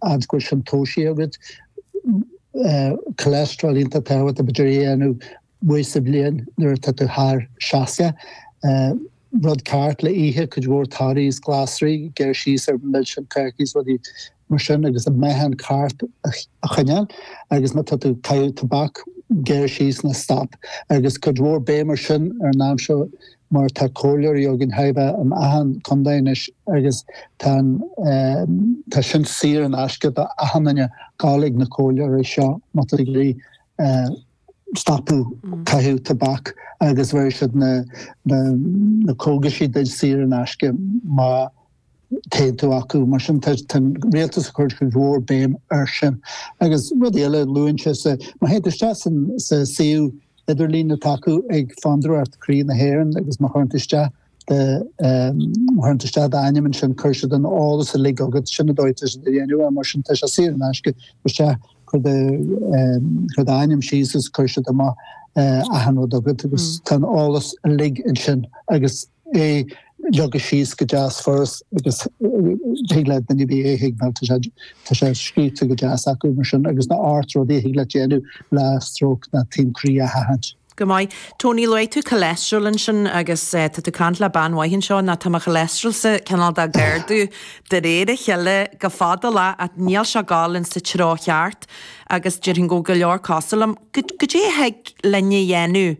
An bhfuil sin tomhaiste agat? Cholesterol iontach tábhachtach, b'fhéidir, a dhéanamh uair sa bhliain nuair atá tú thar 60. Rud ceart le ithe, cuid mhór torthaí is glasraí, gearr síos ar mhilseáin, cácaí, rudaí mar sin agus an meáchan ceart a choinneáil. Agus má tá tú ag caitheamh tobac, gearr síos ná stop. Agus cuid mhór béim air sin ar an am seo mar atá comhairleoirí againn chóir a bheith in achan contae anois agus tá an tá sin saor in aisce do achan duine a ghabháil chuig na comhairleoirí seo má tá tú ag iarraidh stopadh caitheamh tobac agus bheir siad na na na cógaisí duid saor in aisce má théann tú chucu. Mar sin, tá an rialtas ag cur cuid mhór béim air sin. Agus rud eile a luann sé, má théann tú isteach sa suíomh idirlín atá acu ag Fondúireacht Croí na hÉireann agus má chuireann tú isteach de chuireann tú isteach d'ainm ansin cuirfidh siad an eolas uilig chugat, sin an dóigh atá siad a dhéanamh é. Mar sin, tá sé saor in aisce, cuir isteach cuir d'ainm síos agus cuirfidh siad amach achan rud chugat agus tá an eolas uilig ansin agus é leagtha síos go deas furast agus thig le duine ar bith é a thuigbheáil mar tá sé scríobhte go deas acu mar sin agus na hocht rudaí a thig leat déanamh le stróc nó taom croí a sheachaint. Go maith. Tony, luaigh tú choileastrol ansin agus tá tú ag caint le bean mhaith anseo nó tá mo choileastrolsa cineál de ag ardú de réir a chéile go fadálach níl sé ag gabháil sa treo cheart agus déarfainn go bhfuil go leor cosúil liom. Caidé a thig linn a dhéanamh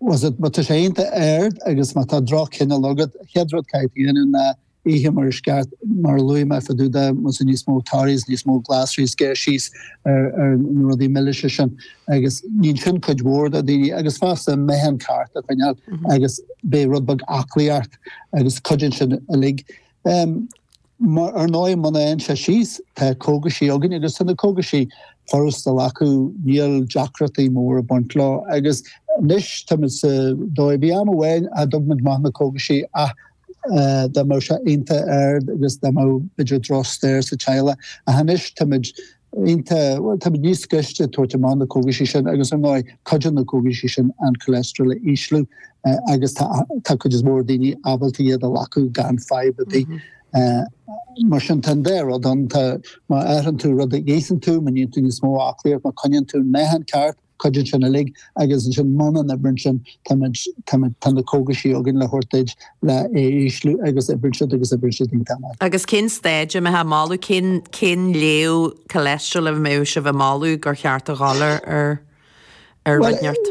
Bhuel Má tá sé iontach ard agus má tá droch-chineál agat, an chéad rud caithfidh tú a dhéanamh ná ithe mar is ceart, mar a luaigh mé fá dtaobh de, más é níos mó torthaí, níos mó glasraí, gearr síos ar na rudaí milis sin agus níonn sin cuid mhór do daoine agus fosta meáchan ceart a choinneáil agus b'fhéidir rud beag aclaíocht agus cuidíonn sin uilig. Mar ar ndóigh, muna dtéann sé síos, tá cógaisí againn agus tá na cógaisí furast a ghlacadh, níl deacrachtaí móra ag baint leo. Agus anois táimid sa dóigh, bhí am amháin nach dtug muid amach na cógaisí ach dá mbeadh sé iontach ard agus dá mbeadh b'fhéidir drochstair sa teaghlach ach anois táimid, Uaireanta, tá muid níos gaiste ag tabhairt amach na cógaisí sin agus ar ndóigh, cuidíonn na cógaisí sin an cholesterol a ísliú agus tá cuid is mó daoine ábalta iad a ghlacadh gan fadhb ar bith. Mar sin tá an dá rud ann, tá má athraíonn tú rud a itheann tú, má níonn tú níos mó aclaíochta, má coinníonn tú an meáchan ceart, cuidíonn sin uilig agus ansin muna n-oibríonn sin táimid, táimid, tá na cógaisí againn le thabhairt duid le é a ísliú agus oibríonn siad agus oibríonn siad iontach maith. Agus cén staid a mbeifeá ag moladh, cén, cén léamh cholesterol a mbeadh sibh ag moladh gur cheart a ghabháil ar, ar, ar righneart,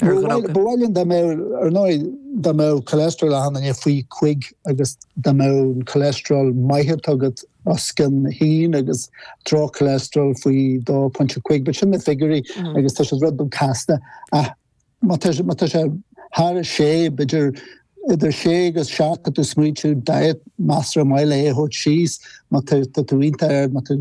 ar dhruga? Ba mhaith linn dá mbeadh, ar ndóigh, dá mbeadh cholesterol achan duine faoi chúig agus dá mbeadh an cholesterol maith agat Os cionn 1 agus droch-choileastrál faoi 2.5, but sin na figiúirí agus tá siad rud beag casta ach má tá má tá sé thar 6, b'fhéidir idir 6 agus 7 tá tú ag smaointiú diet measartha maith le é a thabhairt síos, má tá tá tú iontach ard, má tá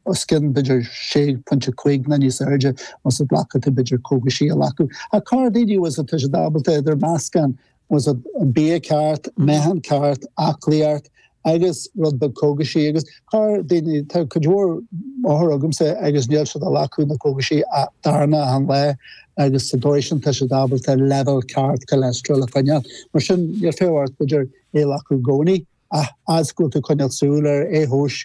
os cionn b'fhéidir 6.5 nó níos airde ná sin caithfidh tú b'fhéidir cógaisí a ghlacadh. Ach corrdhaoine is atá siad ábalta idir meascán Más ea, bia ceart, meáchan ceart, aclaíocht agus rud beag cógaisí. Agus corrdhaoine, tá cuid mhór othar agamsa agus níl siad ag glacadh na cógaisí a darna achan lá agus sa dóigh sin tá siad ábalta leibhéal ceart cholesterol a choinneáil. Mar sin, níl fiacha ort b'fhéidir é a ghlacadh i gcónaí ach fhad is go bhfuil tú ag coinneáil súil air, é a thomhas,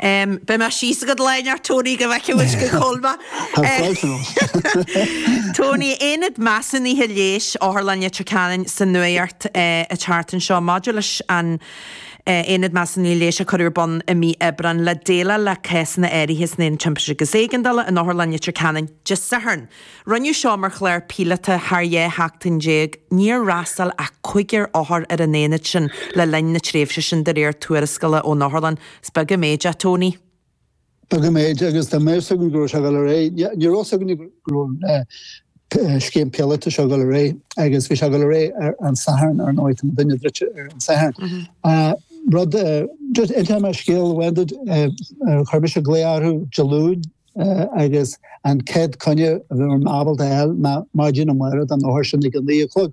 Beidh mé síos agat lá inteacht Tony go bhfeicfidh muid go Colma. Tony, Aonad Measúnaithe Leighis Otharlann Leitir Ceanainn sa nuaíocht an tseachtain seo maidir leis an Aonad Measúnaithe Leighis a cuireadh ar bun i mí Aibreáin le déileáil le cásanna áirithe san Aonad Timpiste agus Éigeandála in Otharlann Leitir Ceanainn Dé Sathairn Rinneadh seo mar chlár píolótach thar dhá sheachtain déag. Níor fhreastail ach cúigear othar ar an aonad sin le linn na tréimhse sin, de réir tuarascála ón Otharlann. Is beag an méid é Tony. Beag an méid, agus dá mbeadh a fhios againn go raibh sé ag dul ar aghaidh. Ní raibh a fhios againne go raibh an scéim píolóta seo ag dul ar aghaidh, agus bhí sé ag dul ar aghaidh ar an Satharn, ar ndóigh. Tá muidinne druidte ar an Satharn. But, just inseoidh mé scéal amháin duit, chuir mise glaoch orthu Dé Luain, agus an chéad coinne a bhí mé ábalta a fháil ná maidin amárach don othar sin ag a naoi a chlog.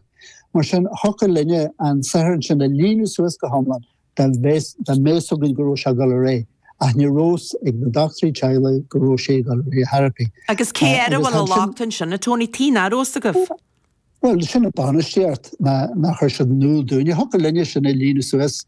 Mar sin, thiocfadh linne an saotharlann sin a líonadh suas go hiomlán dá mbeadh a fhios againn go raibh sé ag dul ar aghaidh, ach ní raibh a fhios ag na dochtúirí teaghlaigh go raibh sé ag dul ar aghaidh ar chor ar bith. Agus cé air a bhfuil an locht ansin, a Tony, tuige nach raibh a fhios agaibh? Bhuel, sin an banistíocht, nach chuir siad in iúl dúinn. Thiocfadh linne sin a líonadh suas.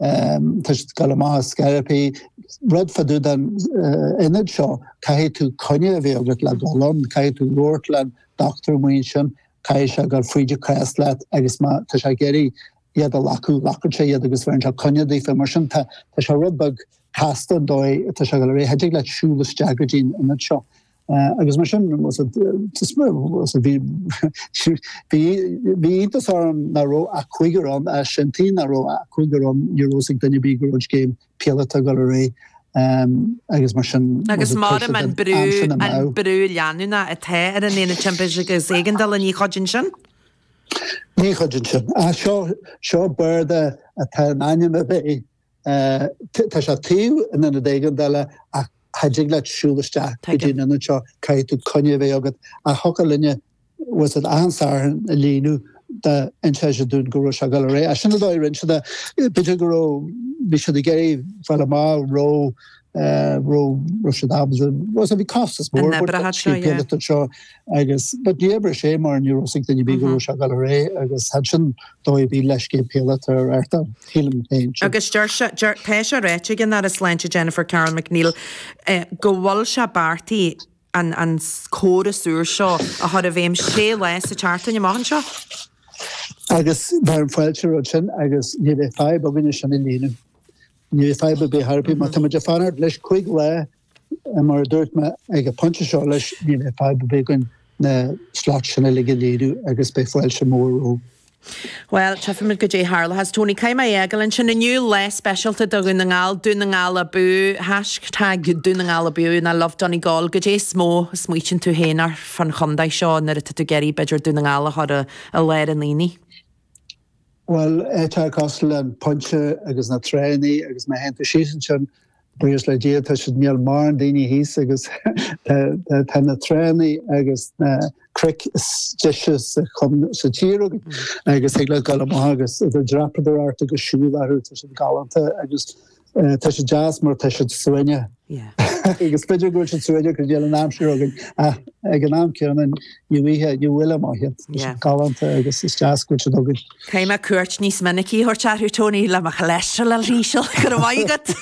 Tá siad ag dul amach ar scor ar bith. Rud fá dtaobh den ionad seo, caithfidh tú coinne a bheith agat le dul ann, caithfidh tú labhairt leis an dochtúir an mhaidin sin, caithfidh sé gabháil fríd an cás leat agus má tá sé ag iarraidh iad a ghlacadh, glacann sé iad agus bheireann sé coinne daofa. Mar sin tá sé rud beag casta an dóigh atá sé ag dul ar aghaidh. Cha dtig leat siúl isteach go dtí an ionad seo. Agus mar sin bhí iontas orm ná raibh ach cúigear ann ach sin tuige ná raibh ach cúigear ann ní raibh a fhios ag duine ar bith go raibh an scéim píolóta ag dul ar aghaidh agus mar sin. Agus maram an brú, an brú leanúnach atá ar an Aonad Timpiste agus Éigeandála ní chuidíonn sin? Ní chuidíonn sin. Seo, seo bearta atá in ainm a bheith Tá sé taobh in ionad éigin eile ach cha dtig leat siúl isteach go dtí an ionad seo, caithfidh tú coinne a bheith agat. Ach thiocfadh linne, was it achan Satharn, a líonadh dá n-inseodh siad dúinn go raibh sé ag dul ar aghaidh. Sin an dóigh a rinne siad é. B'fhéidir go raibh, bhí siad ag iarraidh fáil amach raibh, raibh, raibh siad ábalta, was it, bhí costas mór, an oibreochadh seo, yeah. agus but níor oibir sé mar ní raibh a fhios ag duine ar bith go raibh sé ag dul ar aghaidh agus sin an dóigh a bhí leis, scéim phíolótach atá, sílim féin sin. Agus deir sé, deir, tá sé ráite ag an Aire Sláinte Jennifer Carroll MacNeill eh, go bhfuil sé beartaí an, an córas úr seo a chur i bhfeidhm sé lá sa tseachtain amach anseo. Agus bheadh fáilte roimhe sin agus ní bheadh fadhb againne sin a líonadh. Ní bheadh fadhb ar bith ar chor ar bith má táimid ag fanacht leis 5 lá Mar a dúirt mé, ag an phointe seo leis, ní bheadh fadhb ar bith againn na slots sin uilig a léiriú agus beidh fáilte mhór roimhe. Bhuel, tífimid goidé a tharlóchas. Tony, caithfidh mé a fhágáil ansin inniu. Lá speisialta do Dhún na nGall. Dún na nGall abú! Hashtag Dún na nGall abú! Nó Love Donegal. Goidé is mó a smaoitíonn tú féin air fán chontae seo nuair atá tú ag iarraidh, b'fhéidir, Dún na nGall a chur i lár an aonaigh? Bhuel, áiteacha cosúil le An Pointe agus na tránnaí agus má théann tú síos ansin, buíochas le Dia, tá siad, níl mórán daoine thíos agus tá na tránnaí agus na cnoic is deise sa tír agat agus thig leat dul amach agus dreapadóireacht agus siúl orthu, tá siad galánta agus Tá sé deas mar tá siad suaimhneach. Agus b'fhéidir go bhfuil siad suaimhneach go dtí an aimsir againn ach ag an am céanna ní bhfuightheá, ní bhuailfeá amach iad. Tá siad galánta agus is deas go bhfuil siad againn. Caithfidh mé cuairt níos minicí a thabhairt orthu, Tony, le mo cholesterol a ísliú. Go raibh maith agat!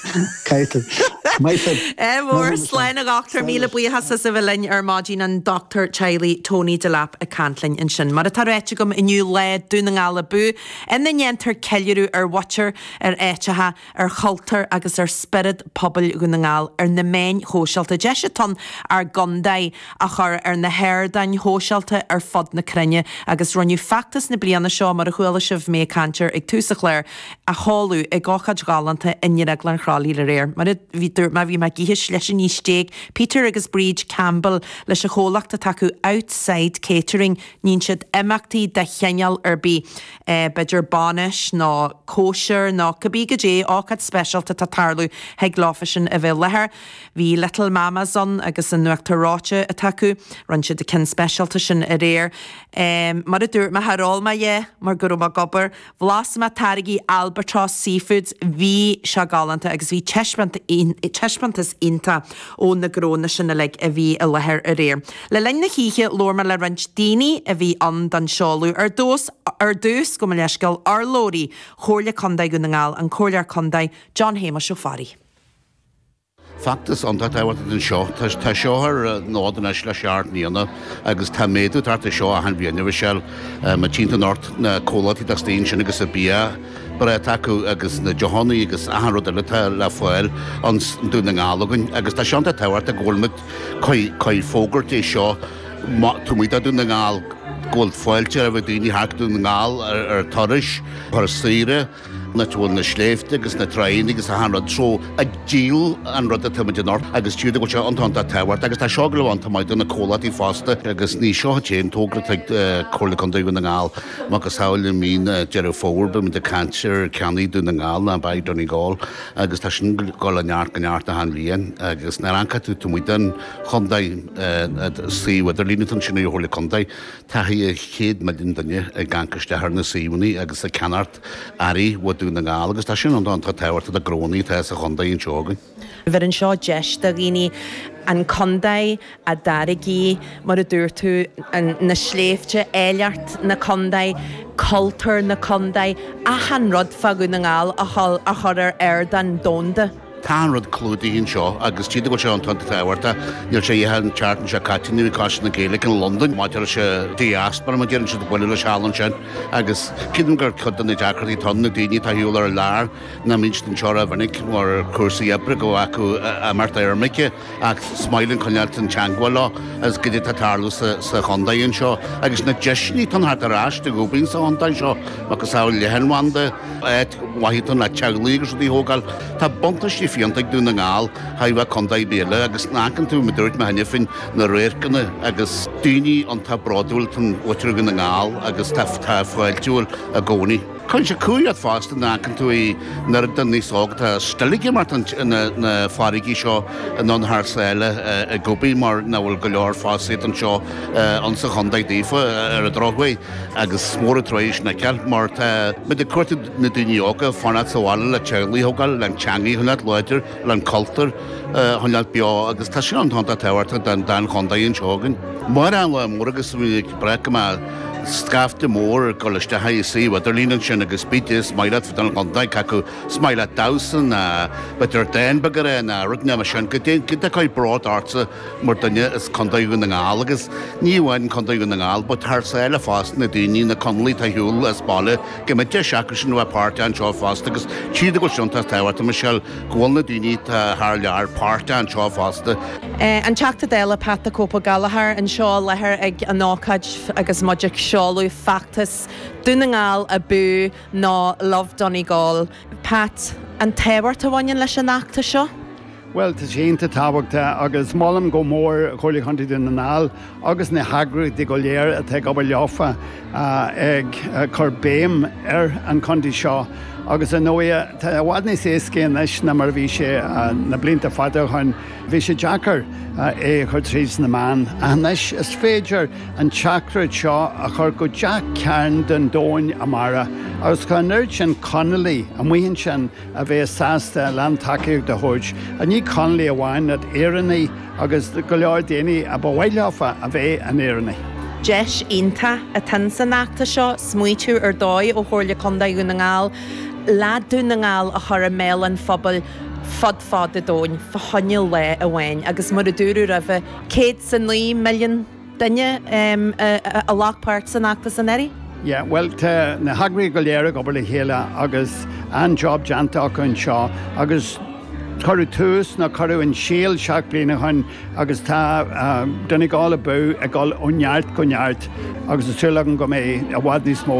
Caithfidh tú. Maith sibh. Ádh mór, Slán a Dhochtúir, míle buíochas as a bheith linn ar maidin an dochtúir teaghlaigh Tony Delap ag caint linn ansin. Mar atá ráite agam inniu, Lá Dún na nGall abú, ina ndéantar ceiliúradh ar mhuintir, ar áiteacha, ar chultúr agus ar spiorad pobail Dhún na nGall ar na meáin shóisialta, deis atá ann ár gcontae a chur ar na hardáin shóisialta ar fud na cruinne agus rinneadh feachtas na bliana seo, mar a chuala sibh mé ag caint air ag tús an chláir, a sheoladh ag ócáid ghalánta i nDrioglann Chroithlí aréir, mar a dúirt mé, bhí mé ag ithe sliseannaí stéig, Peter agus Bríd Campbell leis an chomhlacht atá acu Outside Catering, níonn siad imeachtaí de chineál ar bith. b'fhéidir, bainis, nó cóisir, nó cibé goidé ócáid speisialta atá ag tarlú, thig leofasan a bheith i láthair. Bhí Little Mamma's ann, agus a n-uachtar reoite atá acu. Rinne siad an ceann speisialta sin aréir. Mar a dúirt mé, char ól mé é, mar go raibh mé ag obair. Bhlas mé táirgí Albatross Seafoods. Bhí sé galánta, agus bhí taispeántas iontach ó na gnónna sin uilig a bhí i láthair aréir. Le linn na hoíche, labhair mé le roinnt daoine a bhí ann don seoladh. Ar dtús, ar dtús, gabh mo leithscéal, urlabhraí Chomhairle Contae Dhún na nGall, an Comhairleoir Contae John Shéamuis Ó Fearraigh. Feachtas iontach tábhachtach atá anseo. Tá seo ar an fhód anois le seacht mbliana agus tá méadú ag teacht ar seo achan bhliain, a Mhichelle. Mar tchíonn tú anocht na comhlachtaí atá istigh ansin agus an bia breá atá acu agus na deochannaí agus achan rud eile atá le fáil ins Dún na nGall againn agus tá sé iontach tábhachtach go bhfuil muid ag fógairt é seo taobh amuigh de Dhún na nGall, go bhfuil fáilte roimh daoine theacht go Dún na nGall ar thurais, thuras saoire, áit a bhfuil na sléibhte agus na tránna agus achan rud so, ag díol an rud atá muid anocht agus tchíthear domh go bhfuil sé iontach iontach tábhachtach. Agus tá seo ag dul a bheith iontach maith do na comhlachtaí fosta agus ní seo an t-aon togra atá ag Comhairle Contae Dhún na nGall. Macasamhail i mí Deireadh Fómhair beidh muid ag caint ar Ceannaigh Dún na nGall nó Buy Donegal. agus tá sin ag dul ó neart go neart achan bhliain agus nuair a amharcfaidh tú taobh amuigh den chontae, suíomh idirlín atá ansin ag an Chomhairle Contae, tá thaire chéad milliún duine ag amharc isteach ar na suíomhanna agus ag ceannacht earraí ó Dún na nGall agus tá sin iontach tábhachtach do ghnónna atá sa chontae anseo againn. Bheireann seo deis do dhaoine an contae a dtáirgí, mar a dúirt tú, na sléibhte, áilleacht na contae, cultúr na contae, achan rud fá Dhún na nGall a chur ar ardán domhanda. Tá achan rud clúdaithe anseo agus tchíthear domh go bhfuil sé iontach tábhachtach. Níl sé ach an tseachtain seo caite a bhí Coiste na Gaeilge i Londain maidir leis an diaspora, mar a deireann siad, ag bualadh leosan ansin. Agus creidim gur ceann de na deacrachtaí atá ann na daoine atá ar shiúl thar lear, nach mbíonn siad anseo ró-mhinic mar cúrsaí oibre go bhfuil acu imeacht ar imirce. Ach is maith linn coinneáil i dteagmháil leo is goidé atá ag tarlú sa chontae anseo agus na deiseanna atá ann theacht ar ais ag obair ins an chontae seo, macasamhail leathanbhanda, áit mhaith atá ann le teaghlaigh agus rudaí a thógáil. Tá buntáistí fiúntacha ag Dún na nGall thaire contae ar bith eile agus nuair a amharcann tú, mar a dúirt mé cheana féin, na radharcanna agus daoine iontach bródúil atá i muintir Dhún na nGall agus atá fáiltiúil i gcónaí. Cuireann sé cumhaidh ort fosta nuair a amharcann tú an oiread daoine óga atá still ag imeacht thar na farraigí seo anonn thar sáile ag obair mar nach bhfuil go leor fostaíocht anseo insa chondae daofa ar an drochuair agus is mór an truaighe sin a fheiceáil mar tá muid ag cuartú na daoine óga fanacht sa bhaile le teaghlaigh a thógáil, le an teangaidh a choinneáilt láidir, le an cultúr a choinneáilt beo agus tá sé iontach iontach tábhachtach don chondae anseo againn. Amárach an lá mór agus muid ag. dréim go mbeidh scaifte mór ag dul isteach i suíomh idirlín ansin agus b'fhéidir is maith leat fiddle nó ceol nó cé acu is maith leat damhsa nó b'fhéidir dán beag a rá nó rud mar sin, goidé a chuirfeadh bród ortsa mar dhuine as Contae Dhún na nGall agus ní amháin Contae Dhún na nGall but thar sáile fosta, na daoine, na Conallaigh atá ar shiúl as baile, go mbeidh deis acusean a bheith páirteach anseo fosta agus tchíthear domh go bhfuil sé iontach tábhachtach Michelle go bhfuil na daoine atá thar lear páirteach anseo fosta. An Teachta Dála Pat 'The Cope' Gallagher anseo i láthair ag an ócáid agus muid ag seoladh feachtas Dún na nGall Abú nó Love Donegal. Pat, an tábhacht a bhaineann leis an fheachtas seo? Bhuel, tá sé iontach tábhachtach agus molaim go mór Comhairle Chontae Dhún na nGall agus na heagraíochtaí go léir atá ag obair leofa ag cur béim ar an chontae seo agus ar ndóigh tá i bhfad níos éascaí anois ná mar a bhí sé na blianta fada ó shoin. Bhí sé deacair é a chur trí na meáin ach anois is féidir an teachtaireacht seo a chur go gach cearn den domhan amárach agus tá an oiread sin Conallaigh amuigh ansin a bhéas sásta a lán tacaíochta a thabhairt, ní do Chonallaigh amháin, ach d'Éireannaigh agus do go leor daoine a ba mhaith leofa a bheith ina nÉireannaigh. Deis iontach atá san fheachtas seo smaoiteamh ar dóigh ó Chomhairle Contae Dhún na nGall le Dún na nGall a chur i mbéal an phobail fud fad an domhain fá choinne lae amháin agus mar a dúradh roimhe céad is a naoi milliún duine a ghlac páirt san fheachtas anuraidh. Yeah, bhuel, tá na heagraithe go léir ag obair le chéile agus an-job déanta acu anseo agus cuireadh tús, nó cuireadh an síol seacht bliain ó shin agus tá Donegal ag dul ag dul ó neart go neart agus tá súil agam go mbeidh i bhfad níos mó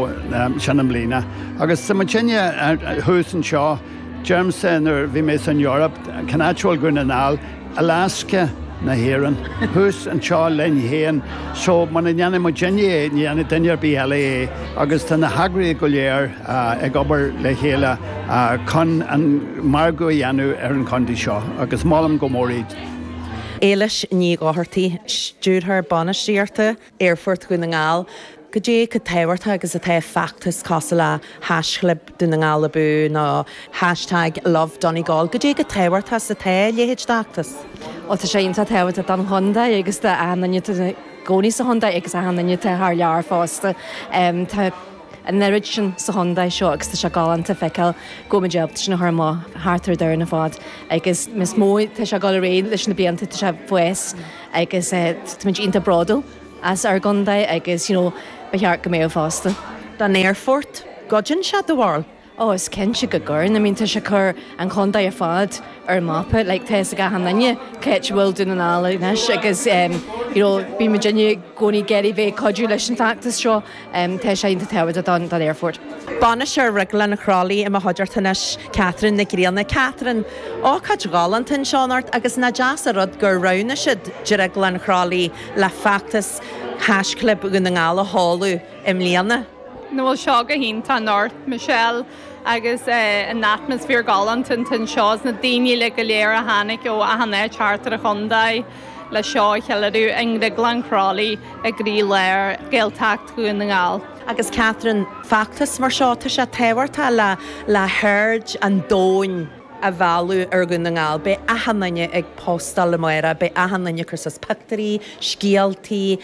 sin i mbliana. Agus tá muidne thuas anseo, deirimse nuair a bhí mé san Eoraip, cén áit a bhfuil Dún na nGall, Alaska na hÉireann, thuas anseo linn féin, so muna ndéanfaidh muid féin é, ní dhéanfaidh duine ar bith eile é agus tá na heagraithe go léir ag obair le chéile chun an margadh a dhéanamh ar an chontae seo agus molaim go mór iad. Éilis Ní Dhochartaigh, Stiúrthóir Bainistíochta. aerfort Dhún na nGall. Cad é chomh tábhachtach agus atá feachtas cosúil le haischlib Dhún na nGall Abú nó hashtag lovedonegal? Cad é chomh tábhachtach is atá a leithéid d'fheachtas? Bhuel, tá sé iontach tábhachtach don chontae agus do na daoine atá ina gcónaí sa chontae agus do na daoine atá thar lear fosta. Tá an oiread sin sa chontae seo agus tá sé galánta feiceáil go bhfuil muid ábalta sin a chur amach thart ar an domhan ar fad. Agus níos mó, tá sé ag dul i méid leis na blianta, tá sé ag fás. agus táimid iontach bródúil as ár gcontae agus you know ba cheart go mbeadh fosta. don aerfort. Cuidíonn sé dá bharr. Oh is cinnte go gcuireann, I mean tá sé ag cur an chontae ar fad ar an mapa like tá fhios ag achan duine cén áit a bhfuil Dún na nGall anois agus em you know bíonn muidinne i gcónaí ag iarraidh bheith ag cuidiú leis an bhfeachtas seo. Tá sé iontach tábhachtach don aerfort. Bainisteoir Dhrioglann Chroithlí i mo chuideachta anois, Catherine Nic Grianna. Catherine, Ócáid ghalánta anseo anocht agus nach deas a' rud gur roghnaigh siad Drioglann Chroithlí le feachtas Haischlib Dhún na nGall a sheoladh i mbliana. Ó bhuel seo go hiontach anocht Michelle agus an atmaisféar galánta anseo is na daoine uilig go léir a tháinig ó achan áit thart ar an chontae. leis seo a cheiliúradh i nDrioglann Chroithlí i gcroílár Ghaeltacht Dhún na nGall. Agus Catherine, feachtas mar seo, tá sé tábhachtach le haird an domhain. a mhealladh ar Dhún na nGall. Beidh achan duine ag póstáil amárach, beidh achan duine ag cur suas pictiúirí, scéaltaí,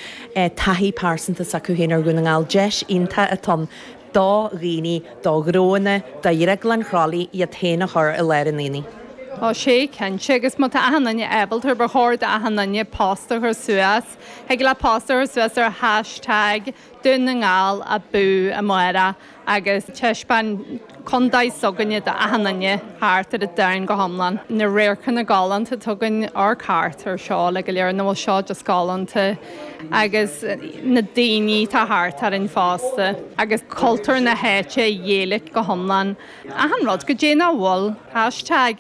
taithí pearsanta s'acu féin ar Dhún na nGall. Deis iontach atá ann. do dhaoine, do ghnónna, do Dhrioglann Chroithlí iad féin a chur i láir an aonaigh. Tá sé cinnte, agus má tá achan duine ábalta, ba chóir d'achan duine post a chur suas. Thig leat post a chur suas ar hashtag Dún na nGall abú amárach agus taispeáin contae s'againne d'achan duine thart ar an domhan go hiomlán. Na radharcanna galánta, tugann ár cartadh ar seó le go léir an bhfuil seo just galánta. agus na daoine atá thart orainn fosta. agus cultúr na háite an Ghaeilge go hiomlán, achan rud, go dtí bhuel hashtag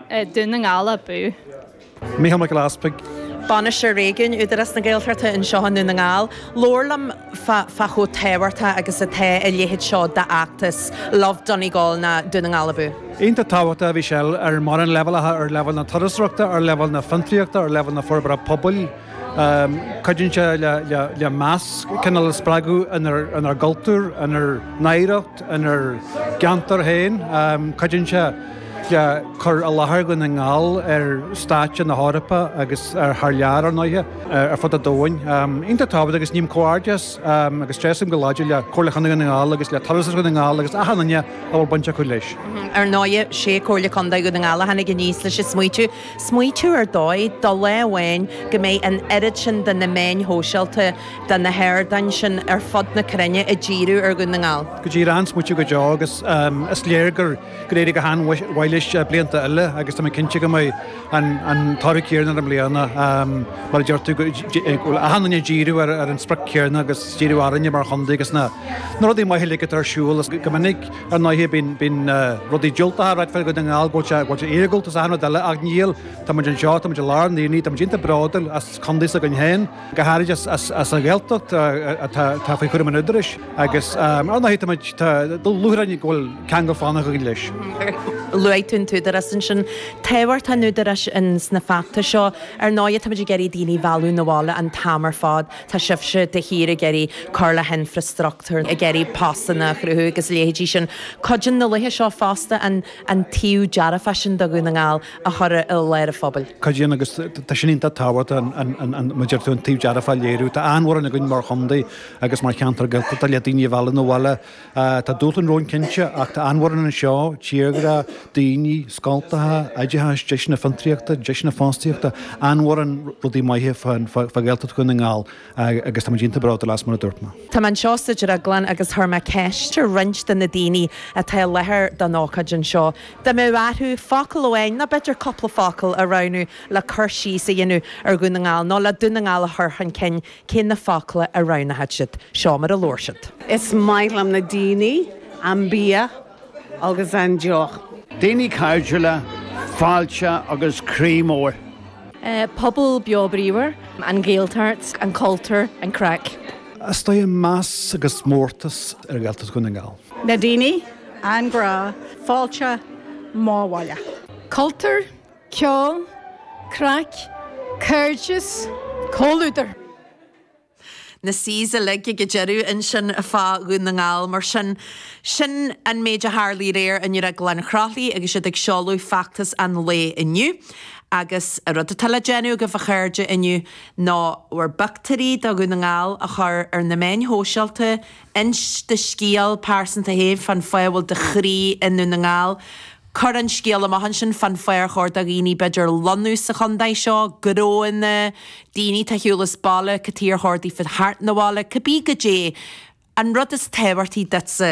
Dún na nGall abú. Mícheál Mac Giolla Easpaig. Bainisteoir Réigiúin, Údarás na Gaeltachta anseo i nDún na nGall. Labhair liom fá chomh tábhachtach agus atá a leithéid seo d'fheachtas, Love Donegal ná Dún na nGall Abú. Iontach tábhachtach a bhí sé ar mórán leibhéalacha, ar leibhéal na turasóireachta, ar leibhéal na fiontraíochta, ar leibhéal na forbartha pobail, Cuidíonn sé le meas cineál a spreagadh inár gcultúr, inár n-oidhreacht, inár gceantar féin. Cuidíonn sé le cur i láthair Dhún na nGall ar stáitse na hEorpa agus thar lear, ar ndóighe, ar fud an domhain. Iontach tábhachtach agus ním comhghairdeas agus tréaslaím go láidir le Comhairle Chontae Dhún na nGall agus le Turasóireacht Dhún na nGall agus achan duine a bhfuil baint acu leis. Ar ndóighe, 'sé Comhairle Contae Dhún na nGall a tháinig aníos leis an smaoitiú. Smaoitiú ar dóigh, do lá amháin, go mbeidh an oiread sin de na meáin shóisialta, de na hardáin sin ar fud na cruinne, ag díriú ar Dhún na nGall. Go díreach, smaoitiú go deo, agus is léir gur éirigh go han-mhaith leis blianta eile agus tá mé cinnte go mbeidh an toradh céarna air i mbliana, mar a deir tú, go bhfuil achan duine ag díriú ar an sprioc céarna agus díriú orainne mar chontae agus na rudaí maithe uilig atá ar siúl go minic. Ar ndóighe, bíonn rudaí diúltacha á ráit fá Dhún na nGall buailte ag iargúltas is achan rud eile ach níl. Tá muid anseo, tá muid i lár an aonaigh, tá muid iontach bródúil as contae s'againn féin, go háirid as an Ghaeltacht atá faoi chúram an Údaráis agus ar ndóighe, tá muid, tá lúcháir orainn go bhfuil ceangal faoi leith againn leis. Luaigh tú an tÚdarás ansin. Tábhacht an Údaráis ins na feachtais seo. Ar ndóighe, tá muid ag iarraidh daoine a mhealladh 'na bhaile an t-am ar fad. Tá sibhse de shíor ag iarraidh cur le hinfreastruchtúr, ag iarraidh postanna a chruthú agus a leithéidí sin. Cuidíonn na laethe seo fosta an taobh dearfach sin de Dhún na nGall a chur i láthair an phobail. Cuidíonn agus tá sin iontach tábhachtach, mar a deir tú an taobh dearfach a léiriú. Tá an-mhórán againn mar chontae agus mar cheantar Gaeltachta le daoine a mhealladh 'na bhaile. Tá dúshláin romhainn cinnte, ach tá an-mhórán anseo, tírdhreach, daoine, scoltacha, oideachas, deiseanna fiontraíochta, deiseanna fostaíochta, an-mhórán rudaí maithe fá Ghaeltacht Dhún na nGall agus tá muid iontach bródúil as mar a dúirt mé. Tá mé anseo sa drioglann agus chuir mé ceist ar roinnt de na daoine atá i láthair don ócáid anseo. Dá mbeadh orthu focal amháin nó b'fhéidir cúpla focal a roghnú le cur síos a dhéanamh ar Dhún na nGall nó le Dún na nGall a chur chun cinn. Cé na focla a roghnódh siad? Seo mar a labhair siad. Is maith liom na daoine, an bia agus an deoch. Daoine cairdiúla, fáilte agus croí mór. Pobal beo bríomhar. An Ghaeltacht, an cultúr, an craic. Is tá meas agus mórtas ar Ghaeltacht Dhún na nGall. Na daoine, an grá, fáilte, mo bhaile. Cultúr, ceol, craic, cairdeas, comhluadar. na C's uilig ag an deireadh ansin fá Dhún na nGall. Mar sin, sin an méid a tharla aréir i nDrioglann Chroithlí agus iad ag seoladh feachtas an lae inniu. Agus an rud atá le déanamh agaibh, a chairde, inniu ná bhur bpictiúirí de Dhún na nGall a chur ar na meáin shóisialta, inis do scéal pearsanta féin fán fáth a bhfuil do chroí i nDún na nGall, Cuir an scéal amach ansin fán fáth ar chóir do dhaoine b'fhéidir lonnú sa chontae seo, gróine, daoine atá ar shiúl as baile, cad chuige ar chóir daofa theacht 'na bhaile, cibé goidé an rud is tábhachtaí duitse.